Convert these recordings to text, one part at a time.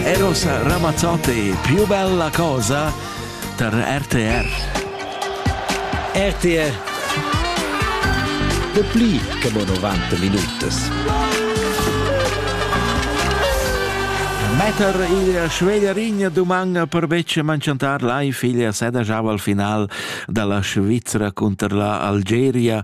Era sa Ramazzotti più bella cosa per RTR. RTR. De pli che mo 90 minutas. Metter il Schwederin duman per betg mancantar la figlia Seda jau al final dalla Svizzera cunter la Algeria.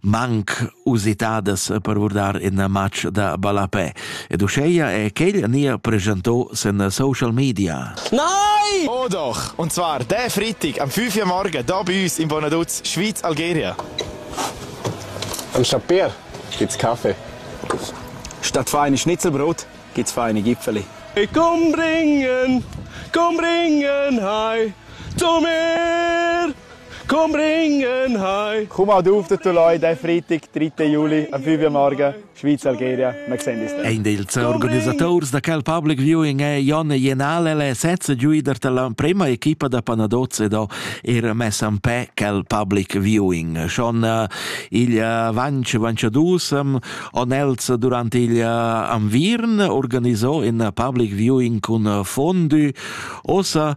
manc usitadas per vurdar in match da ballapè. Ed uscheia è quel nia preschanto sen social media. Nein! Oh doch! Und zwar der Freitag am 5 Uhr morgen da bei uns in Bonaduz, Schweiz, Algeria. Am Chapier gibt's Kaffee. Statt feine Schnitzelbrot gibt's feine Gipfeli. Ich komm bringen, komm bringen, hi, zu mir! Komm ringen heim! Komm auch auf den Tuloi den Freitag, 3. Juli, am 5 Uhr morgen, Schweiz-Algeria. Wir sehen uns dann. Ein dels organisators da quel public viewing è Jon Jenale, le sezza giuider dell'emprima equipa da Panadozze da ir messa en pe quel public viewing. Schon eh, il eh, Vanch Vanciadus ehm, on els durante il eh, Anvirn organisò in public viewing con Fondue. Ossa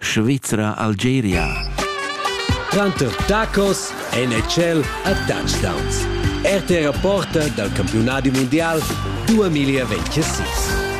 Svizra Algeria. Tranter tacos NHL e touchdowns. RT Reporter dal campiunadi mundial 2026.